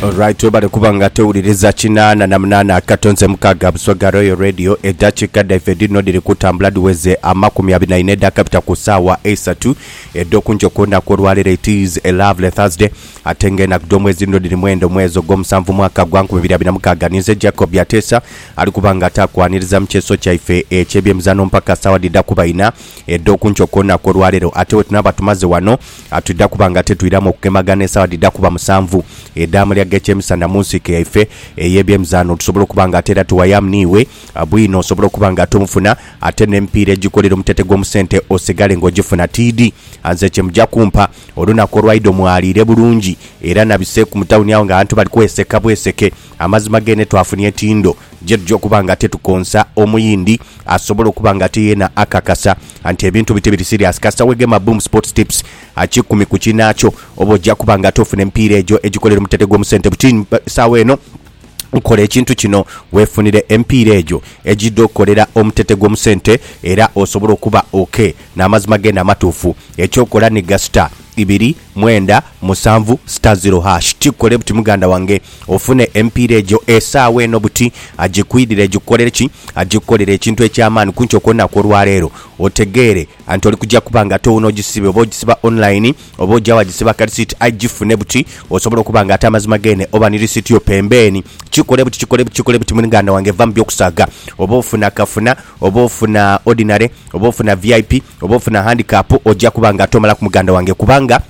Alright, webale kuba nga tewuliriza kinaana na munaana akato nze mukaaga buswa ga Royal Radio. Eddakiika dhaife dhino dhiri kutambula dhiweze amakumi abiri na ina edhakabita ku saawa eisatu edh'oku nkyo ku lunaku olwaleero. It is a lovely Thursday ate nga enaku dh'omwezi dhino dhiri mwenda omwezi ogw'omusanvu mwaka gwa nkumi ibiri abiri na mukaaga. Ninze Jacob Ateesa ali kuba nga ataakwaniriza mu kyeso kyaife eky'ebyemizaano mpaka saawa dhidha kuba ina. edh'oku nkyo ku lunaku olwa leero. Ate bwe tunaaba tumaze wano, twidha kuba nga te twiramu okugemagana esaawa dhidha kuba musanvu edh'amalya ag'ekyemisana mu nsiike yaife ey'ebyemizaano, tusobole okuba nga ate era tuwayamu n'iwe bwino osobole okuba nga ate omufuna ate n'emipiira egikolera omutete gw'omu sente osigale nga ogifuna. Tiidi nze kye muja kumpa. Olunaku olwaidho mwaliire bulungi era nabiseeku mu tawuni agho ng'abantu bali kweseka bweseke. Amazima gene twafunia etindo gyetuja okuba nga tetukonsa omuyindi asobole okuba nga ate yena akakasa anti ebintu bite biri serious kasita wegema Boom Sports Tips kikumi ku kinaakyo oba oja kuba nga ate ofuna emipiira egyo egikolerwa mu Tategwa Omusente Butini saawa eno kola ekintu kino wefunire emipiira egyo egida okolera omu Tategwa Omusente era osobole okuba ok namazima gene amatuufu ekyokola ni gasita ibiri mwenda musanvu star zero hash kikukole buti muganda wange ofune emipiira egyo esaawa eno buti agikwidhire gikukolere ki? Agikukolere ekintu eky'amaani kunkyo kw'olunaku olwaleero otegeere anti oli kuja kuba nga towuuna ogisibe oba ogisiba online oba oja wagisiba akarisiiti aye gifune buti osobole okuba nga ate amazima geene oba ni risiiti yo pembeeni kikukole buti kikukole buti kikukole buti muganda wange va mu by'okusaaga oba ofuna kafuna Oba ofuna Ordinary, oba ofuna VIP, oba ofuna Handicap, oja kuba nga ate omalaku muganda wange kubanga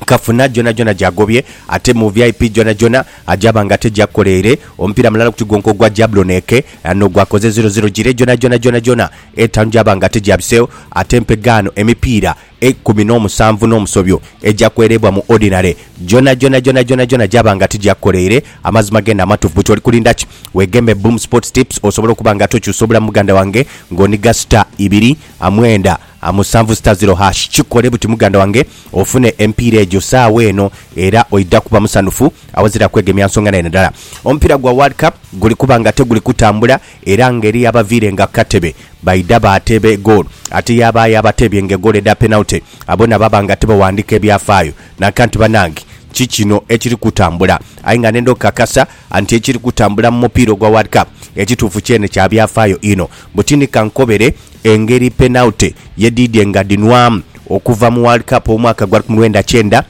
kafuna gyonhagyonha gyagobye ate mu VIP gyonhagyonha aja ba nga ate gyakoleire omupiira mulala ku kigonko ogwa Jablon Eke n'ogwakoze ziro ziro gire gyonhagyonha gyonhagyonha etaanu gyaba nga ate gyabiseegho ate empegaano emipiira Eikumi n'omusanvu n'omusobyo eja kwereebwa mu ordinary gyonhagyonha gyonhagyonha gyaba nga tigyakukolaire. Amazima genda amatufu buti oli kulinda ki? Weeghembe Boom Sports Tips osobole okuba nga tokyusa obulamu muganda wange nga onhiga star ibiri a mwenda a musanvu star zero hash. Kikole buti muganda wange ofune emipiira egyo saagho eno era oidha kuba musanhufu awazira kwegemya nsonga naire dhala. Omupiira gwa World Cup guli kuba nga teguli kutambula Era ngeri yabaviirenga ku katebe, baidha baateeba egoolo. Ate yaabaayo abateebye ng'egoolo edha penalty, abo na baba nga tibawandiika ebyafaayo. Nanka nti, Banange, ki kino ekiri kutambula? Aye nga nenda okukakasa nti ekiri kutambula mu mupiira ogwa World Cup ekituufu kyene kya byafaayo inho. Mbu ti ni ka nkobere engeri penalty ye dhiidye nga dhinwaamu okuva mu World Cup ow'omwaka gwa lukumi lwenda kyenda,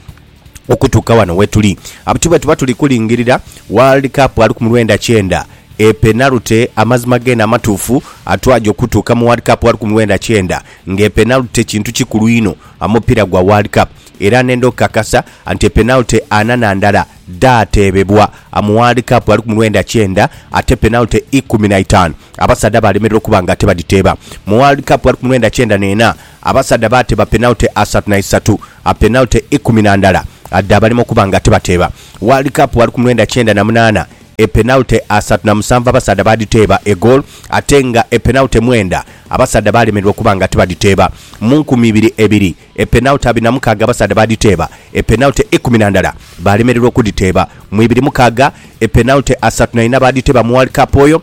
okutuuka wano wetuli. Abuti bwetuba tuli kulingirira World Cup ali ku mu lwenda kyenda e penalty amazima geene amatuufu atwaja okutuuka mu World Cup ali ku mu lwenda kyenda nga e penalty kintu kikulu inho amupiira gwa World Cup era nenda okukakasa nti e penalty ana na ndala dhaateebebwa mu World Cup ali ku mu lwenda kyenda ate penalty ikumi na itaanu abasaadha baalemererwa okuba nga tebadhiteeba. Mu World Cup ali ku mu lwenda kyenda n'ena abasaadha baateeba penalty asatu na isatu. A penalty ikumi na ndala dhabalema okuba nga tibateeba World Cup wali ku mwenda kyenda na munaana e penalty asatu na musanvu abasaadha baadhiteeba e goal ate nga e penalty mwenda abasaadha baalemererwa okuba nga tibadhiteeba Mu nkumi ibiri ebiri e penalty abiri na mukaaga abasaadha baadhiteeba e penalty ikumi na ndala baalemererwa okudhiteeba Mu ibiri mukaaga e penalty asatu na ina baadhiteeba mu World Cup oyo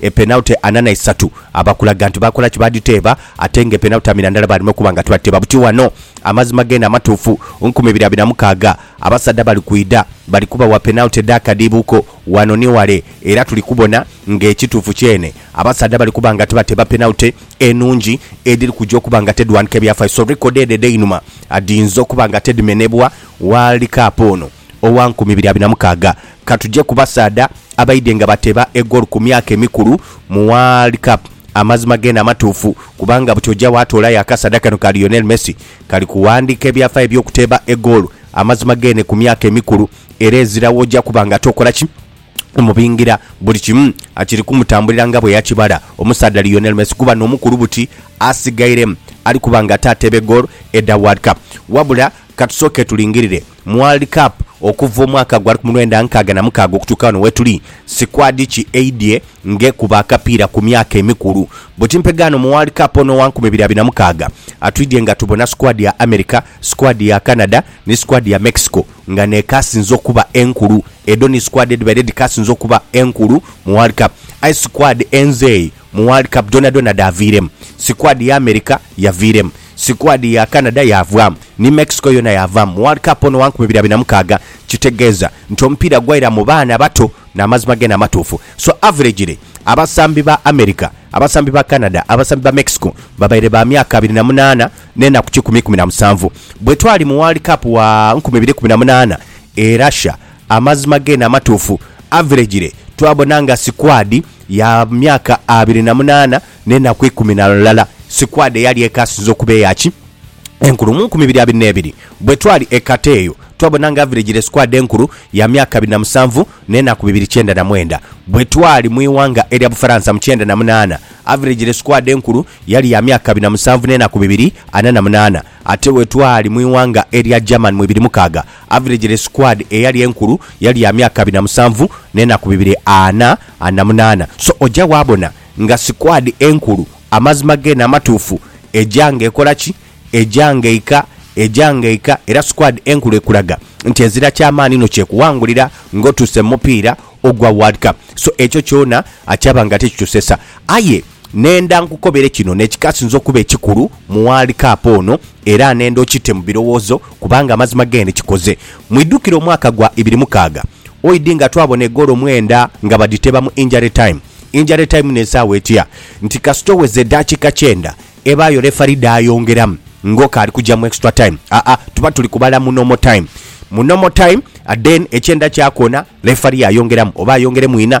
Epenalty ana na isatu aba kulaga nti baakola ki? Baadhiteeba. Ate nga epenalty amina ndala baalina okuba nga tibadhiteeba. Buti ghano, amazima geene amatuufu, nkumi ibiri abiri na mukaaga, abasaadha bali kwidha, bali kubawa penalty edh'akadhiibuuko ghano ni ghale. Era tuli kubona ng'ekituufu kyeene, abasaadha bali kuba nga tibateeba penalty enungi, edhiri kuja okuba nga tedhwandhika ebyafaayo. So record edho edh'einhuma dhiyinza okuba nga tedhimenebwa World Cup ono. owa nkumi ibiri abiri na mukaaga. Ka tuje ku basaadha abaidhye nga bateeba egoolu ku myaka emikulu mu World Cup. Amazima geene amatuufu, kubanga buti oja waatoolayo akasaadha kano ka Lionel Messi kali kuwandiika ebyafaayo eby'okuteeba egoolu amazima geene ku myaka emikulu era ezira w'oja kuba nga tokola ki? Omubingira buli kimu kiri kumutambulira nga bwe yakibala omusaadha Lionel Messi kuba n'omukulu buti asigairemu ali kuba nga taateeba egoolu edha World Cup. Wabula ka tusooke tulingirire. Mu World Cup okuva omwaka gwa lukumi lwenda nkaaga na mukaaga okutuuka ghano wetuli, sikwadi ki eidhye ng'ekuba akapiira ku myaka emikulu. Bweti mpegaano mu World Cup ono owa nkumi ibiri abiri na mukaaga, atwidhye nga tubona sikwadi ya America, sikwadi ya Canada ni sikwadi ya Mexico nga n'ekaasinze okuba enkulu. Edho ni sikwadi edhibaire dhikaasinze okuba enkulu mu World Cup. Aye sikwadi enzeeyi Mu World Cup dhonadhona dhaaviiremu, sikuadi ya America yaviiremu, sikuadi ya Canada yaavaamu, ni Mexico yoona yaavaamu mu World Cup ono wa nkumi ibiri abiri na mukaaga. Kitegeeza nti omupiira gwaira mu baana bato n'amazima geene amatuufu. So averagely, abasambi ba America, abasambi ba Canada, abasambi ba Mexico babaire ba myaka abiri na munaana n'enaku kikumi ikumi na musanvu bwe twali mu World Cup wa nkumi ibiri ikumi na munaana e Russia. Amazima gene amatuufu, Aviregire twabona nga sikwadi ya myaka abiri na munaana n'enaku ikumi na lulala, sikwadi eyali ekaasinze okuba eya ki enkulu mu nkumi ibiri abiri n'ebiri. Bwetwali e Qatar eyo, twabona nga Aviregire sikwadi enkulu ya myaka abiri na musanvu n'enaku bibiri kyenda na mwenda. Bwetwali mu ighanga erya Bufaransa mu kyenda na munaana, Aviregire sikwadi enkulu yali ya myaka abiri na musanvu n'enaku bibiri ana na munaana. Ate bwe twali mu ighanga erya Germany mu ibiri mukaaga, average le squad eyali enkulu yali ya myaka abiri na musanvu n'enaku bibiri ana na munaana. So oja waabona nga squad enkulu, amazima geene amatuufu, eja nga ekola ki? Eja nga eika, eja nga eika. Era squad enkulu ekulaga nti ezira ky'amaani inho ky'ekuwangulira ng'otuuse mu mupiira ogwa World Cup. So ekyo kyona kyaba nga tikitusesa. Aye. Nhenda nkukobere kino n'ekikasinze okuba ekikulu mu World Cup ono era nhenda okite mu birowoozo kubanga amazima gene kikoze. Mwidhukire omwaka gwa ibiri mukaaga oid nga twabona egoolo mwenda nga badhiteeba mu injury time. Injury time n'esaawa etya nti kasita oweza edhakiika kyenda ebaayo refari dhaayongeramu ng'oka ali kuja mu extra time. Aa tuba tuli kubala mu normal time. Mu normal time then ekyenda kyakona refari yayongeramu oba ayongeremu inha.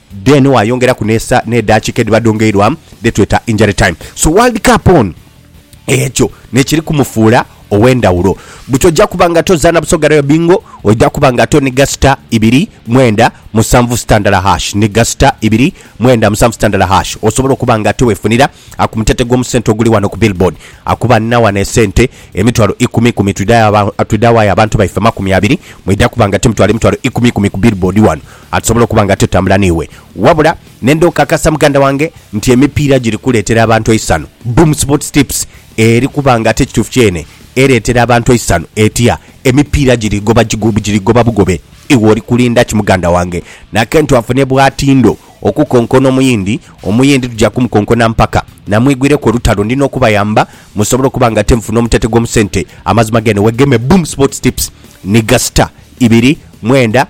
Then wayongeraku n'esa n'edaakika edhiba dhongeirwa dhetweta injury time. So World Cup ono ekyo n'ekiri kumufuula ow'endhawulo. Buti oja kuba nga tozaana Busoga Royal Bingo, oja kuba nga tonigha sita ibiri mwenda musanvu sita ndala hash, nigha sita ibiri mwenda musanvu sita ndala hash osobole okuba nga towefunira ku mutete gw'omu sente oguli wano ku Billboard. Akuba nina wano esente emitwalo ikumi ikumi twidha wayo abantu baife amakumi abiri, mwidha kuba nga timutoala emitwalo ikumi ikumi ku Billboard wano. Atusobola okuba nga tatambula n'iwe. Wabula nenda okakasa muganda wange nti emipiira giri kuleetera abantu eisanhu. Boom Sports Tips eri kuba nga ate kituufu kyene ereetera abantu eisanhu. Etya? Emipiira giri goba giri goba bugobe. Iwe oli kulinda ki muganda wange? Nakentu afune bwatindo okukonkona Omuyindi, Omuyindi tuja kumukonkona mpaka namwigwireku olutalo. Ndi n'okubayamba musobole okuba nga ate mufuna omutete gw'omu sente. Amazima gene wegeme Boom Sports Tips ni ga star ibiri mwenda.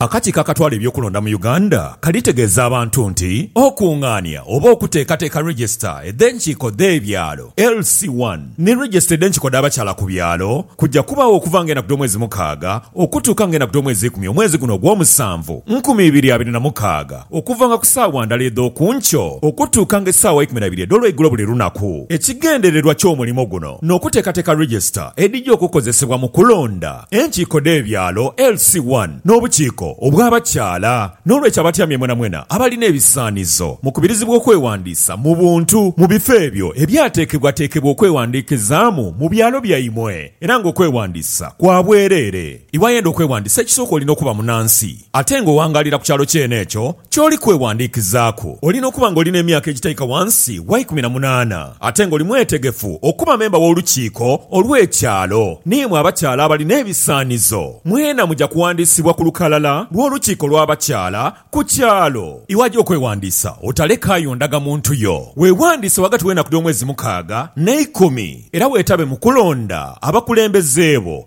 Akakiiko akatwala eby'okulonda mu Uganda kalitegeeza abantu nti okungaania oba okuteekateeka Register edh'enkiiko dh'ebyalo, LC One, ni Register edh'enkiiko dh'abakyala ku byalo kuja kubaagho okuva nga enaku dh'omwezi mukaaga okutuuka nga enaku dh'omwezi ikumi omwezi guno ogw'omusanvu nkumi ibiri abiri na mukaaga okuvanga ku saawa ndala edh'oku nkyo okutuuka nga esaawa ikumi na ibiri edh'olweigulo buli lunaku. Ekigendererwa ky'omulimo guno n'okuteekateeka Register edhija okukozesebwa mu kulonda. enkiiko dh'ebyalo, LC I, n'obukiiko obw'abakyala. N'olwekyo abatyamye mwenamwena abalina ebisaanizo mukubirizibwa okwewandiisa mu buntu mu bifo ebyo ebyateekebwateekebwa okwewandiikizaamu mu byalo byaimwe era ng'okwewandiisa kwa bwereere. Iwayenda okwewandiisa ekisooka olina okuba munansi. Ate nga owangaalira ku kyalo kyene ekyo ky'oli kwewandiikizaaku, olina okuba nga oli n'emyaka egitaika wansi wa ikumi na munaana, ate nga oli mwetegefu okuba memba w'Olukiiko olw'Ekyalo. N'imwe abakyala abalina ebisaanizo, mwena muja kuwandiisibwa ku lukalala lw'Olukiiko lw'Abakyala ku kyalo. Iwaja okwewandiisa, otalekaayo ndagamuntu yo. Weewandiise ghagati w'enaku dh'omwezi mukaaga n'eikumi, era weetabe mu kulonda abakulembeze bo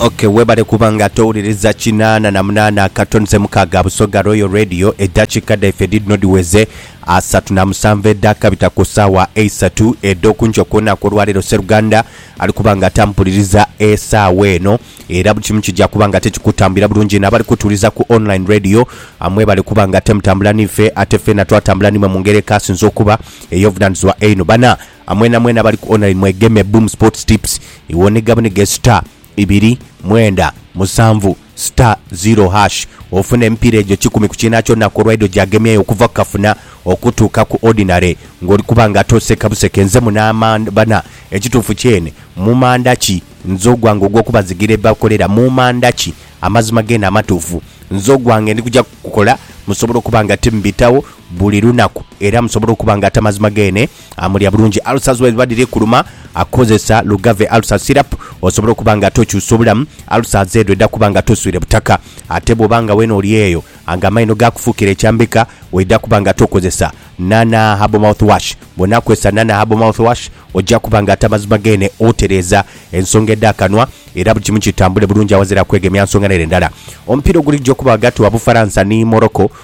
Okay webale kuba nga towuliriza kinaana na munaana akatono ze mukaaga Busoga Royal Radio eddakiika dhaife dhidhino dhiweze asatu na musanvu edhaakabita ku ssaawa eisatu edh'okunkyo ku lunaku olwaleero Sseruganda ali kuba nga tampuliriza esaawa eno era buli kimu kija kuba nga tekikutambulira bulungi n'abali kutuwuliriza ku online radio ah, mwebale kuba nga temutambula niife ate ffena twatambula nimwe mu ngeri ekaasinze okuba Ey'obuvunanizibwa einho bana a mwenamwena abali ku online mwegeme Boom Sports Tips iwe onige bunige star ibiri mwenda musanvu star zero hash ofune emipiira egyo kikumi ku kiina kyona kw'olwaidho gyagemyeyo okuva ku kafuna okutuuka ku ordinary nga oli kuba nga toseka buseke nze muno amanda bana ekituufu kyene mu manda ki nze ogwange ogw'okubazigira ebibakolera mu manda ki amazima geene amatuufu nze ogwange ndi kuja kukola musobola okuba nga timubitawo buli lunaku era musobole okuba nga ate amazima geene amulya bulungi. Ulcers bwedhiba dhiri kuluma, kozesa Lugave Ulcer Syrup osobole okuba nga ate okyusa obulamu, ulcers edho edha kuba nga ate oswire butaka. Ate bwoba nga weena oli eyo nga amaino gaakufuukira ekyambika, oidha kuba nga ate okozesa Nana Herbal Mouth Wash. Bw'onaakozesa Nana Herbal Mouth Wash, oja kuba nga ate amazima geene otereeza ensonga edh'akanwa era buli kimu kitambule bulungi aghazira kwegemya nsonga n'ere ndala. Omupiira oguligya okuba ghagati wa Bufaransa ni Morocco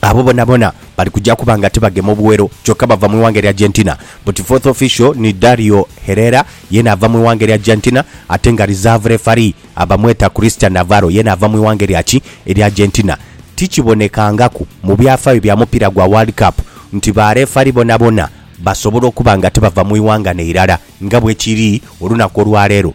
Abo bonabona bali kuja kuba nga tibagema obuwero kyoka bava mu ighanga erya Argentina but fourth official ni Dario Herrera yena ava mu ighanga erya Argentina ate nga reserve referee abamweta Christian Navarro yena ava mu ighanga erya ki? Erya Argentina. Tikibonekangaku mu byafayo bya mupiira gwa World Cup nti ba refari bonabona basobola okuba nga tibava mu ighanga neirala nga bwekiri olunaku olwaleero.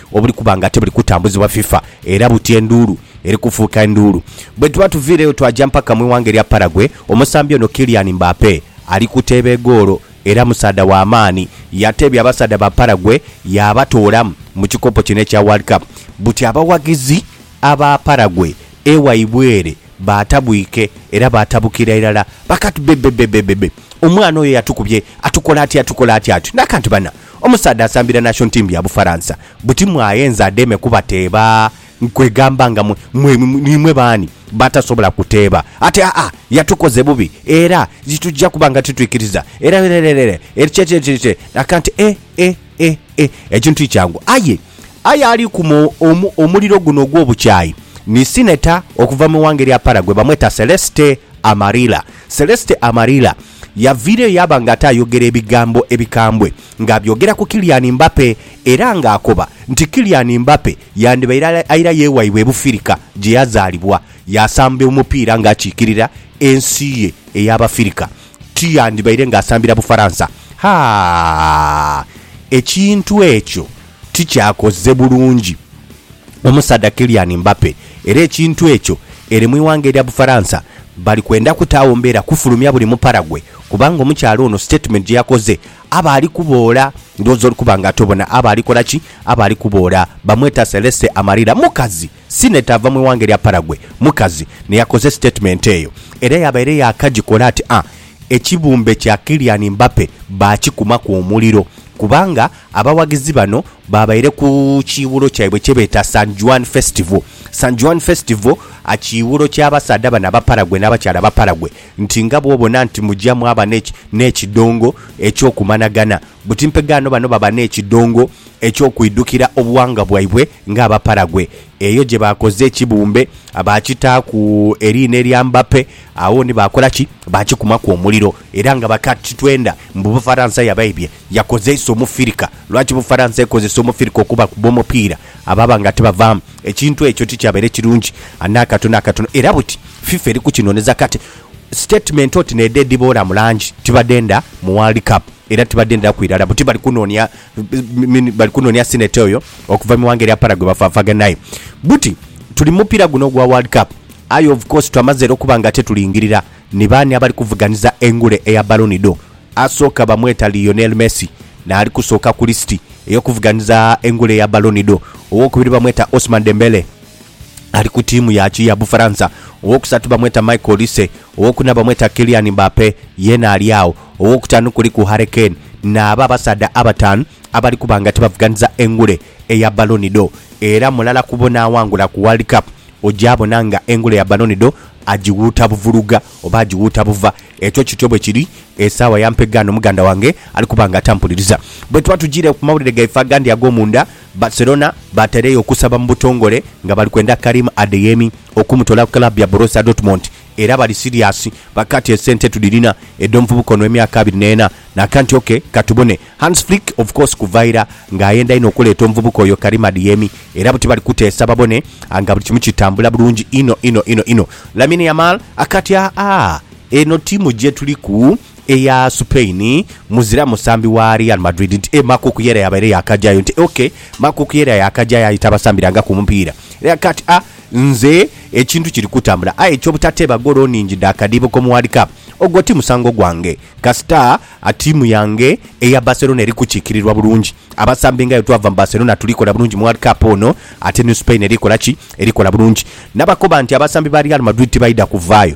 obuli kuba nga tibuli kutambuzibwa FIFA era buti enduulu eri kufuuka enduulu. Bwe tuba tuviireyo twaja mpaka mu ighanga erya Paraguay, omusambi ono Kylian Mbappe ali kuteeba egoolo era musaadha wa maani. Yateebya abasaadha ba Paraguay yaabatoolamu mu kikopo kino ekya World Cup. Buti abawagizi aba Paraguay ewaibwe ere baatabwike era baatabukira irala baka ati, Bebebebebebe! Omwana oyo yatukubye! Atukola atya? Atukola atya atyo? N'aka nti, Bana! Omusaadha asambira Nation Team ya Bufaransa buti mwaghenza adheeme kubateeba kwegamba nga mwe niimwe baani b'atasobola kuteeba ati aa yatukoze bubi era titugya kuba nga titwikiriza era rererere erikyekyekyekyekye akanti e e e e ekintu ti kyangu aye aye alikuma omu omuliro guno ogw'obukyayi ni Senator okuva mu ighanga erya Paraguay bamweta Celeste Amarilla Celeste Amarilla Yaviireyo yaaba nga ate ayogera ebigambo ebikambwe ng'abyogera ku Kylian Mbappe era ng'akoba nti Kylian Mbappe yandibaire aira ye waibwe e Bufirika gye yazaalibwa yaasamba omupiira ng'akiikirira ensi ye ey'Abafirika ti yandibaire ng'asambira Bufaransa. Haa! Ekintu ekyo! tikyakoze bulungi omusaadha Kylian Mbappe era ekintu ekyo ere mu ighanga erya Bufaransa bali kwenda kutaagho mbeera kufulumya buli mupara gwe kubanga omukyala ono sitatimenti gye yakoze aba ali kuboola ndhowooza oli kuba nga ate obona aba ali kola ki? Aba ali kuboola bamweta Celeste Amarilla mukazi Senator ava mu ighanga erya Paraguay mukazi n'eyakoze sitatimenti eyo era yabaire yaakagikola ati a Ekibumbe kya Kylian Mbappe baakikumaku omuliro kubanga abawagizi bano baabaire ku kiiwulo kyaibwe kye beeta San Juan Festival San Juan Festival a kiiwulo ky'abasaadha bano Abaparaguay n'abakyala Abaparaguay nti nga bw'obona nti mugya mwaba n'ekidongo eky'okumanagana Buti mpegaano bano baba n'ekidongo eky'okwidhukira obughanga bwaibwe ng'Abaparagwe. Eyo gye baakoze ekibumbe baakitaaku eriina erya Mbappe, agho ni baakola ki? Baakikumaku omuliro. Era nga bakakitwenda mbu Bufaransa yabaibye, yakozeisa Omufirika. Lwaki Bufaransa ekozesa Omufirika okubakuba omupiira? Ababa nga tibavaamu. Ekintu ekyo tikyabaire kirungi n'akatono n'akatono. Era buti FIFA eri kukinoneza kati sitatimenti oti n'edho edhiboora mu langi tibadhenda mu World Cup. era tibadenderaku irala buti bali kunoonia bali kunoonia Senator oyo okuva mu ighanga erya Para gwe bafaafagana aye buti tuli mu mupiira guno ogwa World Cup aye of course twamaze era okuba nga tetulingirira ni baani abali kuvuganiza engule eya Ballon d'Or. Asooka bamweta Lionel Messi n'ali kusooka ku lisiti ey'okuvuganiza engule eya Ballon d'Or, owookubiri bamweta Ousmane Dembele ali ku tiimu ya ki ya Bufaransa. Ow'okusatu bamweta Michael Olise, ow'okuna bamweta Kylian Mbappe, yeena ali agho. Ow'okutaanu kuliku Harry Kane naabo abasaadha abataanu abali kuba nga tibavuganhiza engule eya Ballon d'Or era mulala ku bo n'awangula ku World Cup ogyabona nga engule ya Ballon d'Or agighuuta buvuluga oba agighuuta buva. Ekyo kityo bwe kiri esaawa ya mpegaano muganda wange ali kuba nga atampuliriza. Bwetuba tujiire ku mawulire gaife agandi ag'omunda, Barcelona batereyo okusaba mu butongole nga bali kwenda Karim Adeyemi okumutola ku club ya Borussia Dortmund era bali siriasi bakati esente tudhirina edhomuvubuka ono emyaka abiri neena nakanti ok katubone Hans Flick of course kuva ira nga ayenda inho okuleeta omuvubuka oyo Karim Adeyemi era buti bali kuteesa babone nga buli kimu kitambula bulungi inho inho inho inho. Lamine Yamal akati aa eno tiimu jetuliku. eya Supain muzira musambi wa Real Madrid nti e Markuk Yera yabaire yaakajayo nti ok Markuk Yera yaakajayo aye tabasambirangaku mupiira era kati a nze ekintu kiri kutambula aye eky'obutateeba goolo nnhingi dha kadiibo k'omu World Cup ogwo ti musango gwange kasita a ttiimu yange eya Barcelona eri kukiikirirwa bulungi abasambi nga bwetwava mu Barcelona tuli kola bulungi mu World Cup ono ate ni Supain eri kola ki? Eri kola bulungi. Nabakoba nti abasambi ba Real Madrid tibaidha kuvaayo.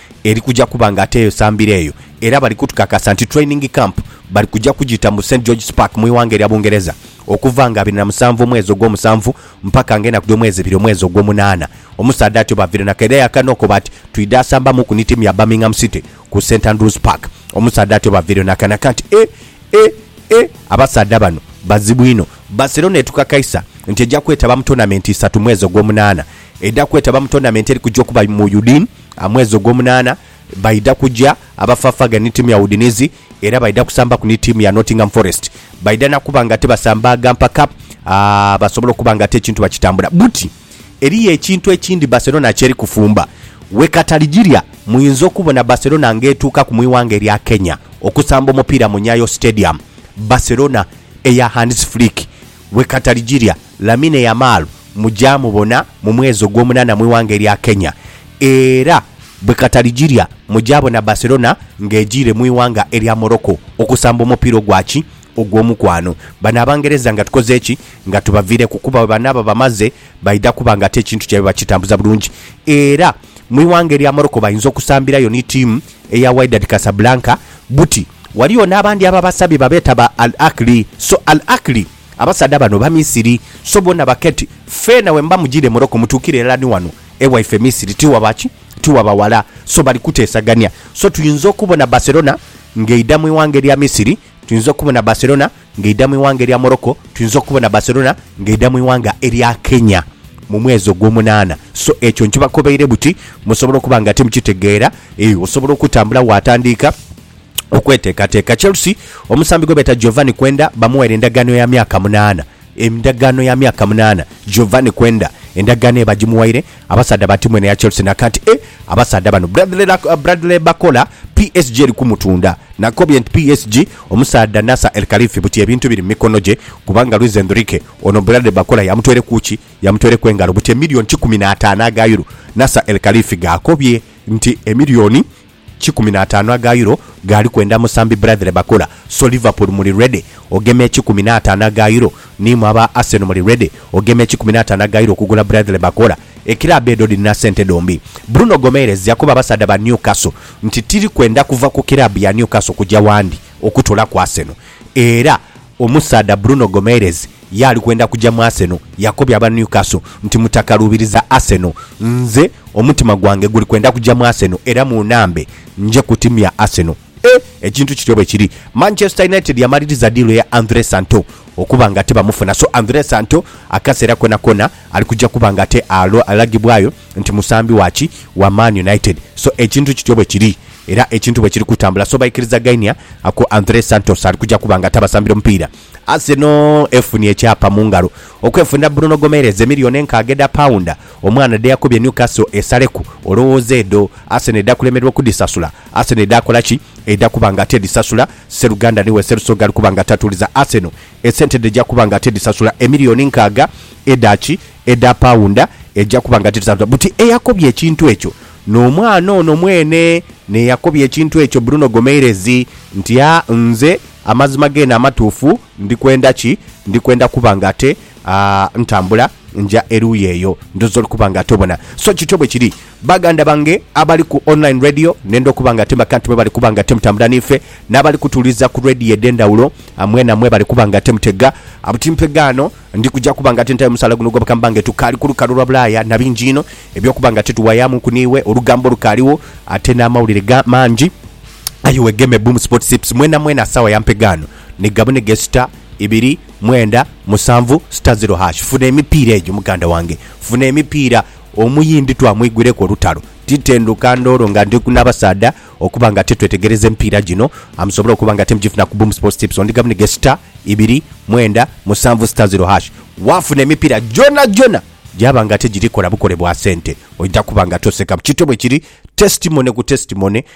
eri kuja kuba nga ate eyo sambiro eyo era bali kutukakasa nti training camp bali kuja kugita mu St George's Park mu ighanga erya Bungereza okuva nga abiri na musanvu omwezi ogwomusanvu mpaka nga enaku dhomwezi ebiri omwezi ogwomunana. Omusaadha atyo bavirenaku era yakanokoba ati twidha asamba muku ni tiimu ya Birmingham City ku St Andrews Park. Omusaadha atyo bavireyo nakanaka nti e e e abasaadha bano bazibu inho. Barcelona etukakaisa nti eja kwetaba mu tournament isatu mwezi ogwomunana. Edha kwetaba mu tournament eri kuja okuba mu Udine. A Mwezi ogwomunaana baidha kuja abafaafaagane ni tiimu ya Udinese era baidha kusambaku ni tiimu ya Nottingham Forest. Baidha na kuba ng'ate basambaaga mpaka basobole okuba ng'ate ekintu bakitambula. Buti eriyo ekintu ekindi Barcelona ky'eri kufumba. Wekatali gilya muinza okubona Barcelona ng'etuukaku mu ighanga erya Kenya okusamba omupiira mu Nyayo Stadium. Barcelona eya Hans Flick Bwe kataligirya, Lamine Yamal mujaamubona mu mwezi ogw'omunaana mu ighanga erya Kenya era bwe kataligirya mujaabona Barcelona ng'ejiire mu ighanga erya Morocco okusamba omupiira ogwa ki? ogw'omukwano. Bano Abangereza nga tukoze ki? nga tubaviireku kuba bwe banaaba bamaze baidha kuba ng'ate ekintu kyaibwe bakitambuza bulungi era mu ighanga erya Morocco bayinza okusambirayo ni tiimu eya Wydad Casablanca buti ghaligho n'abandi ababasabye babeeta ba Al Ahly so Al Ahly abasaadha bano Bamisiri so boona baketi feena bwemuba mujiire Morocco mutuukire irala ni wano ewaife Misiri tiwaba ki? tiwaba wala so bali kuteesagania so tuyinza okubona Barcelona ng'eidha mu ighanga erya Misiri tuyinza okubona Barcelona ng'eidha mu ighanga erya Morocco, tuyinza okubona Barcelona ng'eidha mu ighanga erya Kenya mu mwezi ogw'omunaana. So ekyo nkibakobeire buti musobole okuba nga timukitegeera. Eeh, osobola okutambula waatandiika okweteekateeka. Chelsea, omusambi gwe beeta Giovanni Quenda bamughaire endagaano ya myaka munaana. Endagaano ya myaka munaana. Giovanni Quenda endagaano eyo bagimughaire. Abasaadha ba tiimu eno eya Chelsea na kati e abasaadha bano Bradley Bakola PSG eri kumutunda na nkobye nti PSG omusaadha Nasser El Khelaifi buti ebintu biri mu mikono gye kubanga Luis Enrique ono Bradley Bakola yamutwereku ki? Yamutwereku engalo buti emiliyoni kikumi n'ataano aga Euro Nasser El Khelaifi g'akobye nti emiliyoni Kikumi na ataanu aga Euro gaali kwenda musambi Bradley Bakula. So Liverpool muli ready ogema ekikumi na ataanu aga Euro? Ni imwe aba Arsenal muli ready ogema ekikumi na ataanu aga Euro okugula Bradley Bakula? Ekiraabu edho dhirina sente dhombi. Bruno Gomeres yakoba abasaadha ba Newcastle nti tiri kwenda kuva ku kiraabu ya Newcastle kuja wandi okutula ku Arsenal. Era omusaadha Bruno Gomeres Ye ali kwenda kuja mu Arsenal. Yakobya aba Newcastle nti, Mutakaluubiriza Arsenal. Nze omutima gwange guli kwenda kuja mu Arsenal era munnambe nje kutimya Arsenal. E! Ekintu kityo bwe kiri. Manchester United yamaliriza diiru ya Andre Santo okuba nga ate bamufuna. So Andre Santo akaseera koonakoona ali kuja kuba nga ate alagibwayo nti musambi wa ki? Wa Man United. So ekintu kityo bwe kiri era ekintu bwe kiri kutambula. So baikirizagainia ako Andre Santos ali kuja kuba nga ate abasambira omupiira. Arsenal efunye ekyapa mu ngalo okwefunira Bruno Gomeres emiliyoni enkaaga edha paunda, omwana dhe yakubye Newcastle esaleku. Olowooza edho Arsenal edha kulemererwa okudhisasula? Arsenal edha kola ki? Edha kuba nga tedhisasula. Sseruganda ni we Sserusoga ali kuba nga tatuuliza Arsenal. Esente dh'eja kuba nga tedhisasula emiliyoni nkaaga edha ki? Edha paunda. Eja kuba nga tedhisasula. Buti eyakobye ekintu ekyo n'omwana ono mwene n'eyakobye ekintu ekyo Bruno Gomeres nti, Aa, nze. Amazima geene amatuufu, ndi kwenda ki? Ndi kwenda kuba nga ate, a, ntambula nja eruuyi eyo. Ndhooza oli kuba nga ate obona. So kityo bwe kiri, baganda bange abali ku online radio, nenda okuba nga ate makanti mwe bali kuba nga ate mutambula niife, n'abali kutuwuliriza ku radio edh'endhawulo, a, mwena mwe bali kuba nga ate mutega. A, buti mpegaano, ndi kuja kuba nga ate ntayo musaala guno ogw'obukama bwange. Tukaali ku lukalu lwa bulaaya na bingi inho eby'okuba nga ate tuwayaamuuku n'iwe. Olugambo lukaaligho, ate n'amawulire ga, mangi. Aye wegeme Boom Sports Tips mwena mwena sawa ya mpegaano ni gabune ge star ibiri mwenda musanvu star zero hash funa emipiira egyo muganda wange funa emipiira omuyindi twamwigwireku olutalo titenduka ndoolo nga ndi nabasaadha okuba nga tetwetegereza emipiira gino amusobole okuba nga temugifuna ku Boom Sports Tips on gabune ge star ibiri mwenda musanvu star zero hash wafuna emipiira gyona gyona gyaba nga tegiri kola bukole bwa sente oida kuba nga tosekamu kito bwekiri testimony ku testimony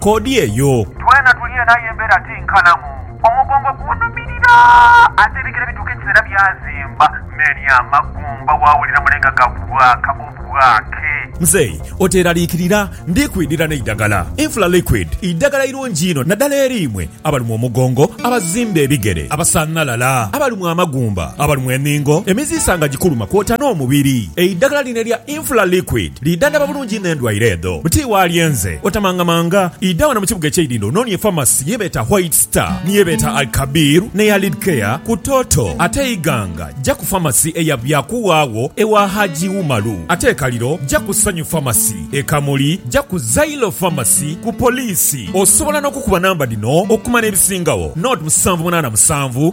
koodi eyo. Twena tuli eno aye embeera ti nkalamu. Omugongo gunhumirira ate ebigere bituuka ekiseera byazimba me ni amagumba waawulira mule nga gabwaaka obwaake. Mzeei oteeraliikirira, ndi kwidhira n'eidagala. Infla Liquid idagala irungi inho naddala eri imwe abalumwa omugongo, abazimba ebigere, abasanhalala, abalumwa amagumba, abalumwa enhingo, emiziisa nga gikuluma kwota n'omubiri. Eidagala lino erya Infla Liquid. Liida ndaba bulungi inho endwaire edho buti waalyenze. Otamangamanga, idha wano mu kibuga eky'eidhindho onoonie efamasi ye beeta White Star, ni ye beeta Al-Kabir, n'eya Lidcare ku Toto. Ate Iganga, ja ku famasi eya Byakuwa agho ewa Haji Umaru. Ate e Kaliro, ja ku Sanyu Famasi. E Kamuli, ja ku Zailo Famasi ku Poliisi. Osobola n'okukuba namba dhino okumanya ebisingagho, 0787.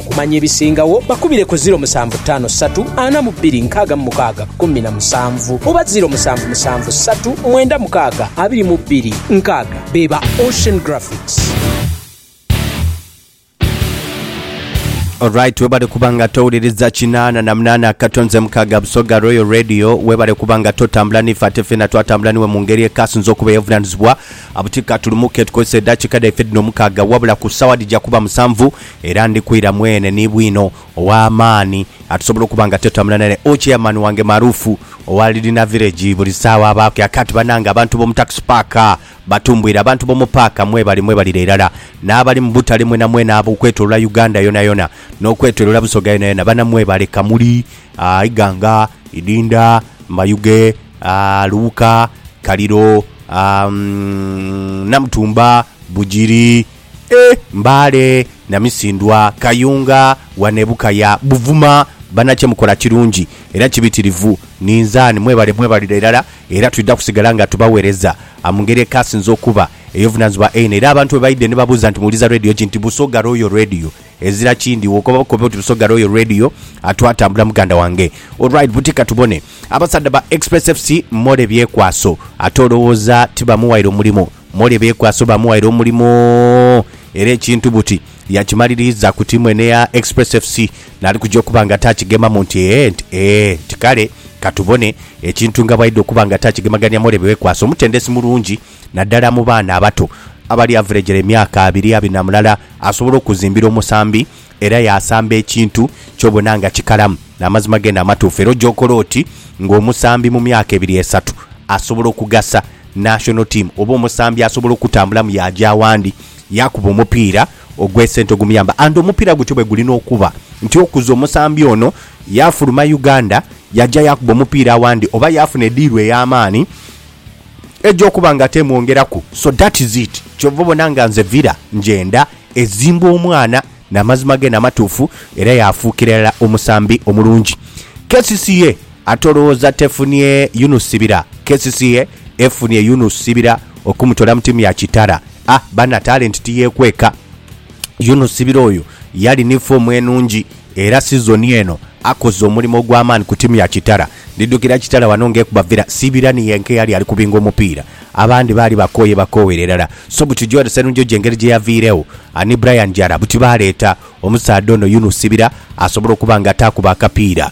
Okumanya ebisingagho bakubire ku ziro musanvu ttaano ssatu ana mu bbiri nkaaga mu mukaaga kkumi na musanvu oba ziro musanvu musanvu ssatu mwenda mukaaga abiri mu bbiri nkaaga be ba Ocean Graphics. Alright webale kuba nga towuliriza kinaana na munaana akato nze mukaaga busoga royal radio webale kuba nga totambula nife ate fena twatambula niwe mu ngeri ekasinza okuba eyobuvunanizibwa abuti katulumuke tukozese edakiika dhaife dhino mukaaga wabula ku sawa dhija kuba musanvu Era ndi kwira mwene ni bwino ow'amaani atusobola okuba nga twetambula naye. O chairman wange maruufu owa Lidina Village buli saagha abaaku ya kati. Banange abantu b'omu tax park batumbwire, abantu b'omu paaka mwebali, mwebalire irala, n'abali mu butale mwenamwena ab'okwetolola Uganda yonayona n'okwetolola Busoga yonayona, bana mwebale Kamuli, Iganga, Idinda, Mayuge, Luwuka, Kaliro, Namutumba, Bugiri. E Mbale, Namisindwa, Kayunga, Wane Bukaya, Buvuma, banakye mukola kirungi era kibitirivu ninzani mwebale mwebalira irala era twidha kusigala nga tubawereza amungeri ekasinze okuba eyobuvunanizibwa eino era abantu bwebaidhe nibabuuza nti muwuliza radio ki nti Busoga Royal Radio ezira kindi wokoba bukobi oti Busoga Royal Radio twatambula muganda wange Alright buti katubone abasaadha ba Express FC More byekwaso ate olowooza tibamuwaire omulimu. Mole beekwaso baamughaire omulimu era ekintu buti yakimaliriiza ku tiimu eno eya Express FC n'ali kuja okuba nga taakigemamu nti ee nti ee nti kale ka tubone ekintu nga bw'aidha okuba nga taakigemagania Mole beekwaso mutendesi mulungi naddala mu baana abato abali averegera emyaka abiri abiri na mulala asobola okuzimbira omusambi Era yaasamba ekintu ky'obona nga kikalamu n'amazima geene amatuufu, era ogy'okola oti ng'omusambi mu myaka ebiri esatu asobola okugasa national team oba omusambi asobola okutambulamu yaaja awandi yaakuba omupiira ogw'esente ogumuyamba and omupiira gutyo bwe gulina okuba nti okuza omusambi ono yaafuluma Uganda yaja yaakuba omupiira awandi oba yaafuna ediiru ey'amaani egy'okuba nga ate emwongeraku so that is it ky'ova obona nga nze Villa ngyenda Ezimbwa omwana n'amazima ge n'amatuufu era yaafuukira irala omusambi omulungi. Kcca ate olowooza tefunie Yunus Sibira? Kcca efunie Yunus Sibira okumutoola mu tiimu ya Kitara. A bana, talenti tiyeekweka. Yunus Sibira oyo yali ni foomu enungi era sizoni eno akoze omulimo ogw'amaani ku tiimu ya Kitara. Ndidukira Kitara wano ng'ekuba Villa, Sibira ni yenka eyali ali kubinga omupiira. Abandi baali bakooye bakoowere irala. So butidyo eno Sserunjoji engeri gye yaviiregho ni Brian Jara buti baaleeta omusaadha ono Yunus Sibira asobole okuba nga ataaku b'akapiira.